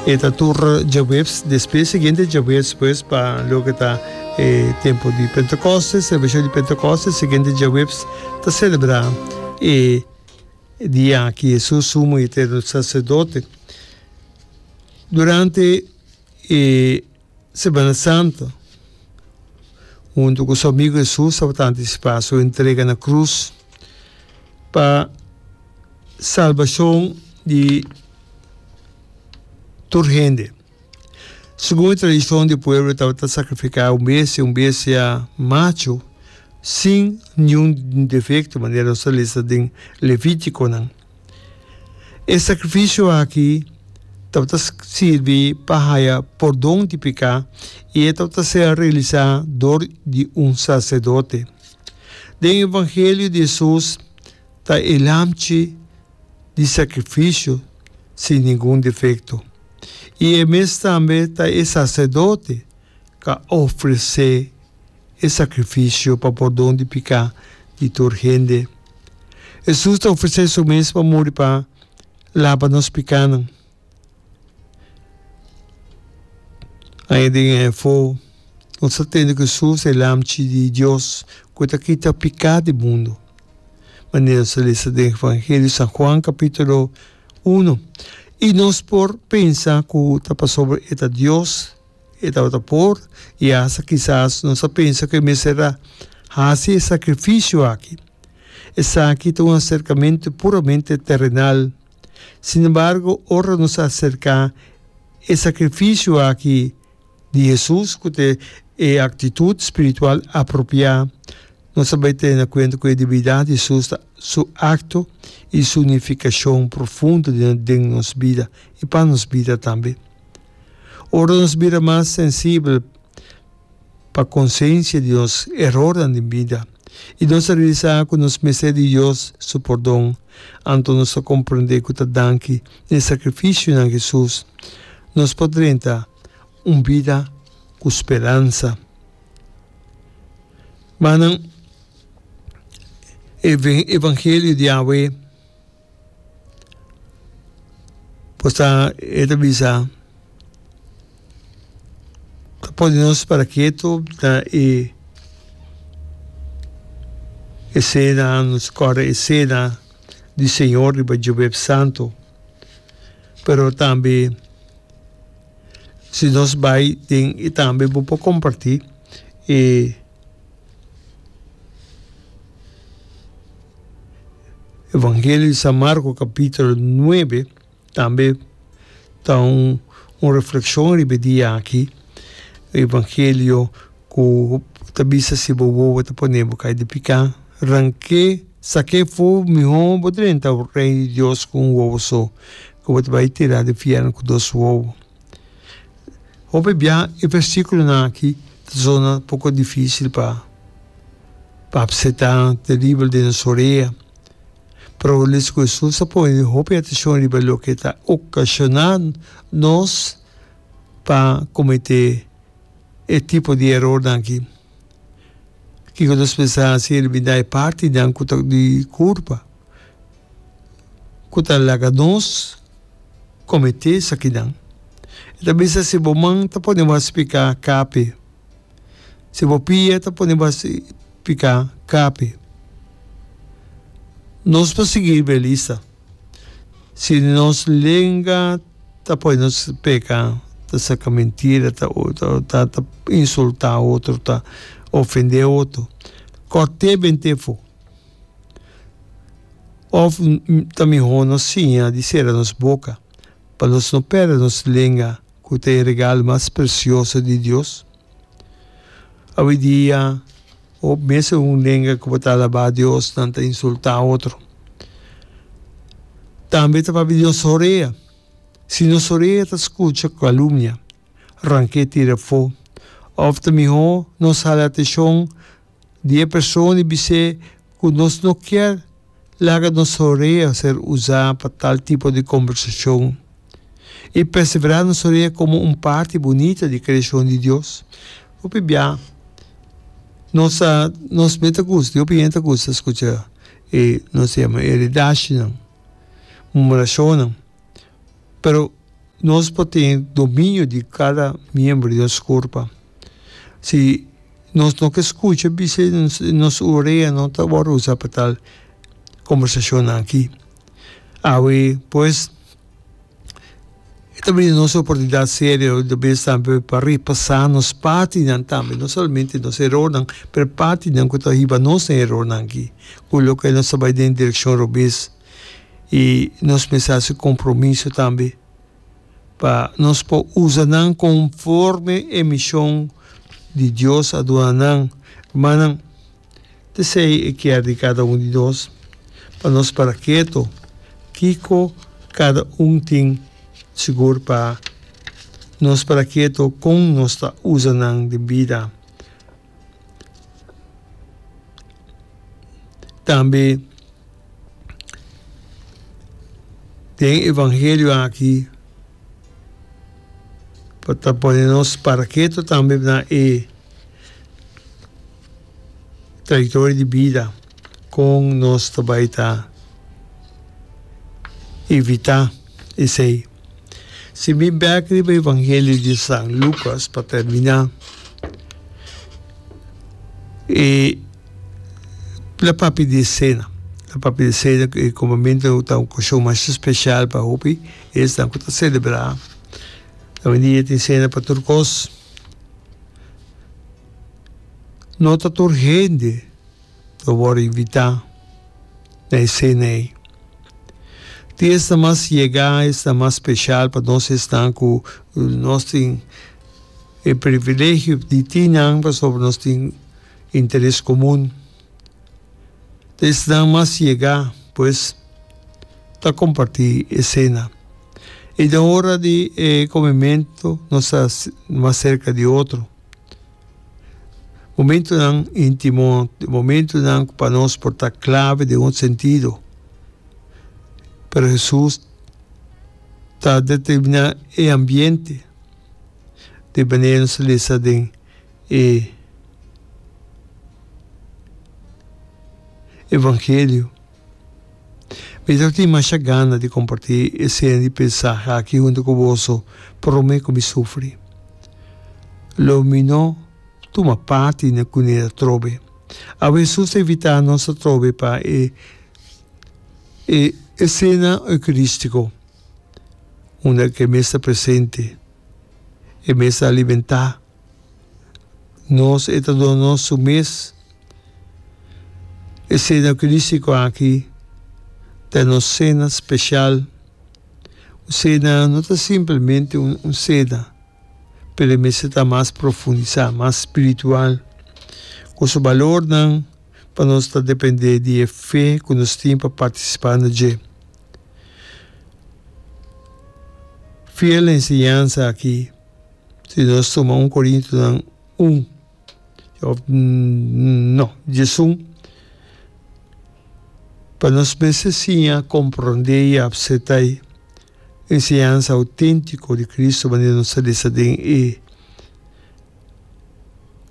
E ta tur djabuebs despues, siguiente djabuebs pues pa loke ta e tempo di Pentecoste, celebracion di Pentecoste, siguiente djabuebs ta celebra e dia aki Jesus sumo y eterno sacerdote. Durante e. Semana Santo, huntu ku su amigu Hesus tabata antisipá su entrega na krus pa salbashon di tur hende. Segun e tradishon di pueblo e tabata sakrifiká un besia, un besia machu sin niun defekto, manera nos ta lesa den Levítikonan. E sakrifisio aki tabata sirbi pa haya pordon di peká i e tabata ser realisá dor di un saserdote. Den evangelio di Hesus ta e lamchi di sakrifisio sin ningun defekto, i e mes tambe ta e saserdote k'a ofresé. e sakrifisio pa pordon di piká di tur hende. Hesus ta ofresé su mes pa muri pa laba nos pikánan. Aña den e afó, nos ta tende ku Hesus e Lamchi di Dios ku e ta kita piká di mundu. Manera nos a lesa den Evangelio San Juan kapítulo uno, i nos por pensa ku ta pasobra e ta Dios, E tabata por i asta kisas nos a pensa ku e mester a hasi e sakrifisio aki. Esaki ta un aserkamentu puramente terenal. Sinembargo, ora nos a aserká e sakrifisio aki di Hesus ku ta e aktitut spiritual apropiá, nos a bai tene kuenta ku e debidat di Hesus ta Su akto i Su unifikashon profundo den nos bida i pa nos bida tambe. Ora nos bira mas sensibel pa konsensia di nos erornan den bida i nos a realisá ku nos mester di Dios su pordon, anto nos ta komprendé ku ta danki na e sakrifisionan Hesus nos por drenta un bida ku speransa. Manan, e evangelio di Yahweh. Posta e ta bisa, ta pone nos para ketu na e esena, nos kòrda e sena di Señor riba Jueves Santo. Pero tambe si nos bai den tambe bo por kompartí e Evangelio di San Marco capítulo nuebe tambe ta un un refleccion riba e dia aki, evangelio cu ta bisa si bo wowo ta pone bo cay di pica, ranke, sake fo miho bo ta drenta Reino di Dios cu un wowo so, cu bo ta bay tira di fier cu dos wowo. Hopi bia e versíkulonan aki ta zona poko difísil pa pa apsetá, teribel den nos orea. Pero lis ku Hesus a pone hopi ateshon riba loke e ta okashoná nos pa kometé e tipo di erornan aki. Kiko nos mester hasi el bindá e partinan ku ta di kurpa? ku ta laga nos kometé esakinan. E ta bisa, Si bo man ta pone bo a spiká, kape. Si bo pia ta pone bo a spiká, kape. Nos por sigui e lista. Si nos lenga ta pone nos peka, ta saka mentira, ta insultá otro, ta ofendé otro, kòrt'é bent'é afó. Of ta mihó nos siña di sera nos boka pa nos no pèrdè nos lenga ku ta e regalo mas presioso di Dios? Awidia hopi mes e un lenga ku por ta alabá Dios nan ta insultá otro. Tambe ta papia di nos orea. Si nos orea ta skucha kalumnia, rank'é tira afó. Of ta mihó nos hala ateshon. Di e persona di bis'é ku nos no kier laga nos horea ser usá pa tal tipo di kombersashon i perseverá nos horea komo un parti bunita di kreashon di Dios. Por p'biá, nos ta, nos mes ta gusta, hopi hende ta gusta skucha e nos yama e redashi nan, murmurashonnan. pero nos por tin dominio di cada miembro di nos curpa, si nos no ke scucha bisha nos urea no ta wor usa pa tal conversacionnan aki, awe pues e ta bini nos oportunidad serio di bes tambe pa repasa nos partinan tambe no solamente nos erornan pero partinan cu ta hiba nos den erornan aki cu loke nos ta bay den direccion robes. y nos mester haci compromiso tambe pa nos por usa nan conforme e mision di Dios a duna nan. Rumannan, tesey e kier di cada un di nos pa nos para keto kico cada un tin sigur pa nos para keto con nos ta usa nan den bida. Tambe den evangelio aki por ta pone nos parake ta tambe na e traitorio di bida, kon nos ta bai ta evita esei. Si mi bek riba Evangelio di San Lucas pa termina, e la papia di e sena. La papia di sena e comamento ta un ocasión mas special pa hopi esnan cu ta celebra. Oindia tin sena pa tur cos. No ta tur hende. lo wòrdu invitá na e sena ei. Tin esnan mas yegá, esnan mas speshal pa nos esnan ku nos tin e privilegio di tin nan pasobra nos tin interes komun. Te esnan mas yegá pues ta kompartí e sena. I den ora di e komementu nos ta mas serka di otro. Momentunan intimo, momentunan ku pa nos por ta klave den un sentido. Pero Hesus ta determiná e ambiente di manera nos ta lesa den e evangelio. Mi ta tin masha gana di comparti e seña di pensahe aki hunto cu boso prome cu mi sufri. Lo mi no tuma parti na cuneda atrobe. Awe Hesus ta invita nos atrobe pa e e e cena eucaristico unda cu e mes ta presente, e mes ta alimenta Nos e ta duna nos su mes esena crístico aki, ta e nos cena special. Un cena no ta simplemente un cena, pero e mester ta mas profundisa, mas spiritual, cu su balornan pa nos ta depende di e fe cu nos tin pa participa na dje. Fiel enseñansa aki. Si nos tuma un Korintonan un òf no djesun, pa nos mester siña komprondé i apseptá e enseñansa outéntiko di Kristu manera nos a lesa den e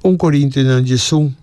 un Korintonan djesun.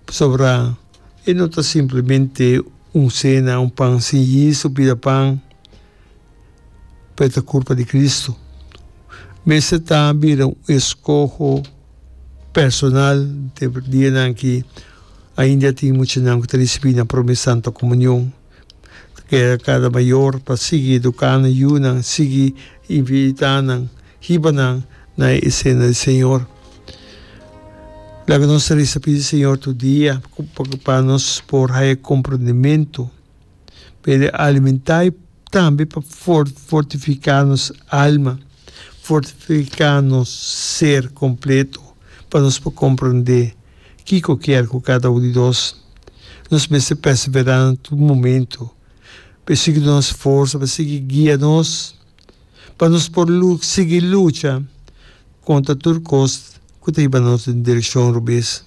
Pasobra e no ta simplemente un sena, un pan sin yis, su pida pan, pa e ta kurpa di Kristu, mester ta bira un eskoho personal den e dianan ki ainda a tin muchanan ku ta risibí nan promé Santa Komunion. Ta keda kada mayor pa sigui eduká nan yunan, sigui invitá nan, hiba nan na e Sena di Señor. Laga nos resa pidi Señor tur dia pa nos por haya komprondementu. pero e alimentá e tambe pa fortifiká nos alma, fortifiká nos ser kompleto pa nos por komprendé kiko kier ku kada un di nos. Nos mester perseverá na tur momentu. Pe sigui duna nos forsa, pe sigui guia nos pa nos por sigui lucha kontra tur kos ku ta hiba nos den direkshon robes.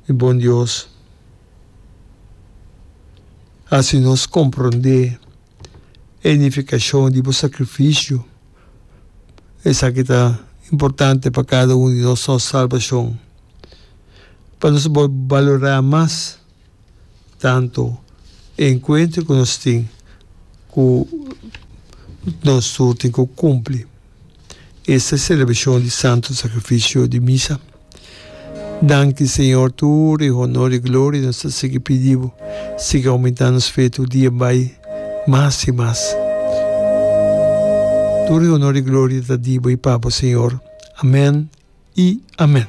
Mi bon Dios, hasi nos komprondé e nifikashon di bo sakrifisio. Esaki ta importante pa kada un di nos, nos salbashon, pa nos balorá mas. Tanto e encuentro cu nos tin cu nos tur tin cu cumpli esta e celebracion di Santo Sacrificio di Misa. Danki Señor, tur e honor y gloria nos ta sigui pidi Bo. Sigui aumenta nos fe tur dia bay mas y mas. Tur e honor y gloria ta di Bo y pa Bo, Señor. Amen y amen.